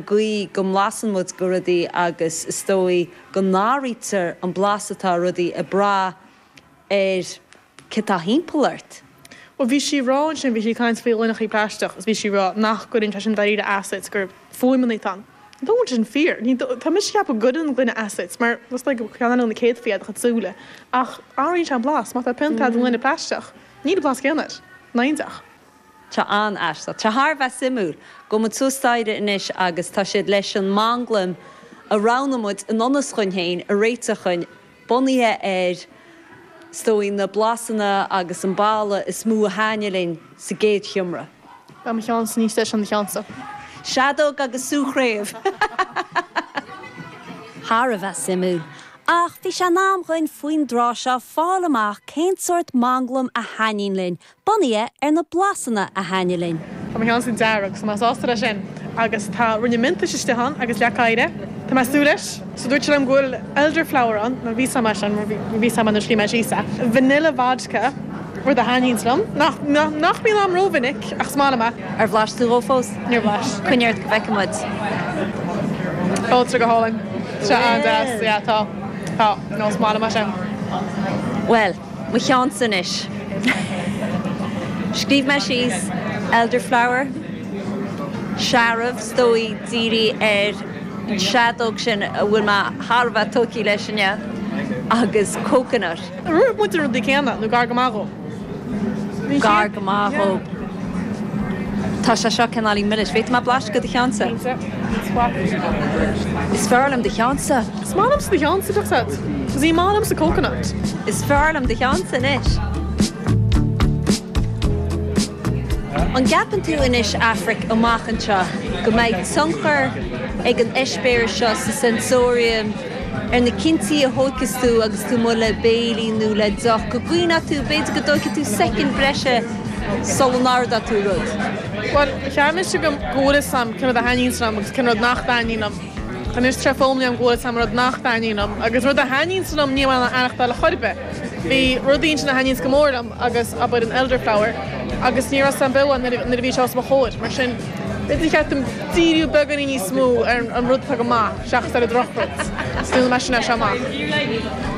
gcaoi go mblasann muid de rudaí agus is dóigh go n-athraítear an blas atá ar rudaí ag brath ar cé tá thimpeall ort. Bhuel, bhí sí ag rá ansin, bhí sí ag caint faoi ghloineachaí plaisteach agus bhí sí ag rá nach gcuireann sé sin dáiríre as duit, gur fuaimeanna atá ann. I don't bhfuil sé sin fíor? Ní, tá mise ag ceapadh go gcuireann an gloine as duit mar is dóigh gur ceann eile de na céadfaí é do chuid súile ach athraíonn sé an blas, má tá pionta a'd i ngloine plaisteach, níl an blas céanna air. Nach iontach. Tá an-aisteach. Tá thar a bheith suimiúil. Gabhfaidh muid suas staighre anois agus tá siad leis an manglaim a roghnaigh muid i ngan fhios dhúinn féin a réiteach dhúinn, bunaithe ar, is dóigh, na blasanna agus an boladh is mó a thaithnigh linn sa gcéad sheomra. Tá mo cheannsa níos deise ná do cheannsa. Seadóg agus sú craobh! Thar a bheith suimiúil. Ach bhí sé in am dhuinn faoin dtráth seo fáil amach cén sórt manglaim a thaitníonn linn, Bunaithe ar na blasanna a thaitnigh linn. Tá mo cheannsa dearg so tá mé sásta leis sin agus tá ruainne miontais istigh ann agus leac oighre. Tá mé ag súil leis. So dúirt sé liom go bhfuil elderflower ann, nó bhí 'fhios a'm é sin, bhí 'fhios a'm é nuair a scríobh mé síos é. Vanilla vodka, rud a thaitníonns liom, nach, nach mbíonn a'm ró-mhinic ach is maith liom é. Ar bhlais tú dhó fós? Níor bhlais. Coinnigh ort go bhfeice muid. Tá sé go hálainn. Tá sé an-deas, yeah, tá, tá, no, is maith liom é sin. Bhuel, Mo cheannsa anois. Scríobh mé síos elderflower, searbh, is dóigh, dírithe ar an seadóg sin a bhfuil mé thar a bheith tógtha leis inniu, agus coconut. Rinne muid na rudaí céanna, nó gar go maith dhó. Gar go maith dhó. Tá sé seo cineáilín milis. An bhféadfaidh mé blaiseadh de do cheannsa? Is fearr liom do cheannsa. Is maith liomsa do cheannsa, Chuck said, cos ní maith liomsa coconut. Is fearr liom do cheannsa anois. An gceapann tú anois, Aifric, amach anseo, go mbeidh tionchar ag an eispéireas seo sa sensorium ar na cinntí a thóigfeas tú agus tú amuigh le béilí nó le deoch, go gcuimhneoidh tú, b'fhéidir, go dtóigfidh tú soicind breise sula n-ordóidh tú rud? Bhuel, cheap mise go bhfuil 'fhios a'm cén rud a thaitníonns liom agus cén rud nach dtaitníonn liom. Anois tar éis foghlaim go bhfuil 'fhios a'm an rud nach dtaitníonn liom, agus rud a thaitníonns liom níl mé in ann é a aithneachtáil ar chor ar bith. Bhí rud ansin a thaitníos go mór liom agus b'in é an elderflower, agus ní raibh 'fhios a'm beo é nuair a bhí sé os mo chomhair, mar sin b'fhéidir gur cheart dom díriú beagáinín níos mó ar an rud atá go maith seachas ar an drochrud. So déanfaidh mé sin as seo amach.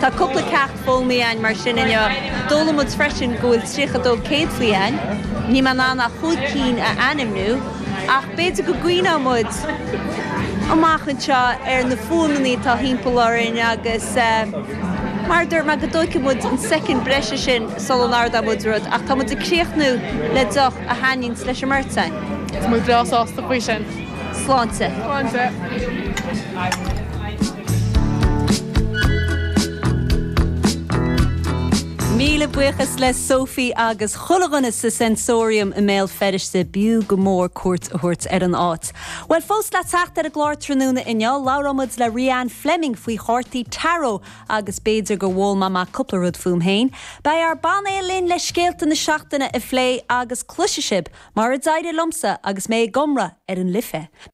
Tá cúpla ceacht foghlamtha againn mar sin inniu. D'fhoghlaim muid freisin go bhfuil 32 céadfaí againn. Níl mé in ann ach chúig cinn a ainmniú. Ach b'fhéidir go gcuimhneoidh muid amach anseo ar na fuaimeanna atá thimpeall orainn agus, mar a dúirt mé, go dtóigfaidh muid an soicind breise sin sula n-ardóidh muid rud. Ach tá muid ag críochnú le deoch a thaitníos leis an mbeirt againn. Tá muid breá sásta faoi sin. Sláinte. Sláinte. Míle buíochas le Sophie agus. Chuile dhuine sa Sensorium i mBéal Feirste b'fhiú go mór cuairt a thabhairt ar an áit. Bhuel, fós le teacht ar an gclár tráthnóna inniu, labhróidh muid le Rhianne Fleming faoi chártaí Tarot agus b'fhéidir go bhfoghlaimeoidh mé cúpla rud fúm féin. Beidh ár bpainéal linn le scéalta na seachtaine a phlé agus cloisfidh sibh mar a d'éirigh liomsa agus mé ag iomramh ar an Life.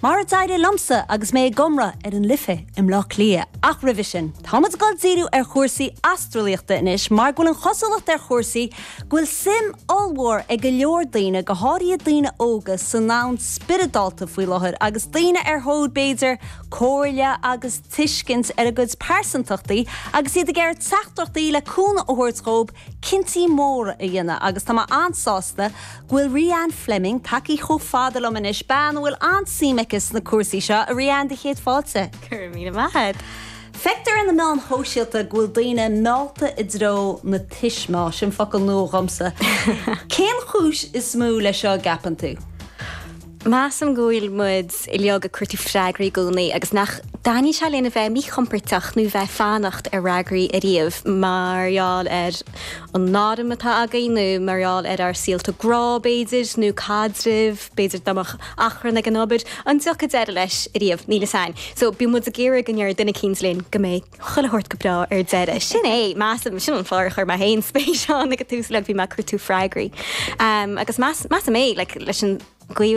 Mar a d'éirigh liomsa agus mé ag iomramh ar an Life i mBleá Cliath. Ach roimhe sin, tá muid ag dul díriú ar chúrsaí astralaíochta anois mar go bhfuil an chosúlacht ar chúrsaí go bhfuil suim ollmhór ag go leor daoine, go háirithe daoine óga, sa ndomhan spioradálta faoi láthair agus daoine ar thóir, b'fhéidir, comhairle agus tuiscint ar a gcuid pearsantachtaí agus iad ag iarraidh teachtaireachtaí le cúnamh a thabhairt dhób cinntí móra a dhéanamh agus tá mé an-sásta go bhfuil Rhianne Fleming tagtha chomh fada liom anois, bean a bhfuil an-suim aici sna cúrsaí seo. A Rhianne, do chéad fáilte. Go raibh míle maith agat. Feictear ar na meáin shóisialta go bhfuil daoine meallta i dtreo na tuismeá, sin focal nua dhomsa. Cén chúis is mó leis seo an gceapann tú? Measaim go bhfuil muid uilig ag cuartú freagraí i gcónaí agus nach dtaitníonn sé linn a bheith míchompordach nó bheith ag fanacht ar fhreagraí ariamh mar gheall ar an ainm atá againn nó mar gheall ar ár saolta grá, b'fhéidir, nó caidrimh, b'fhéidir dá mbeadh achrann ag an obair, an dtiocfadh deireadh leis ariamh? Níl fhios a'inn. So bíonn muid ag iarraidh go ndéarfaidh duine eicínt linn go mbeidh chuile shórt go breá ar deireadh. Sin é, measaim, sin an fáth ar chuir mé féin spéis ann ag an tús, like bhí mé ag cuartú freagraí. Agus measaim é, like leis an gcaoi a bhfuil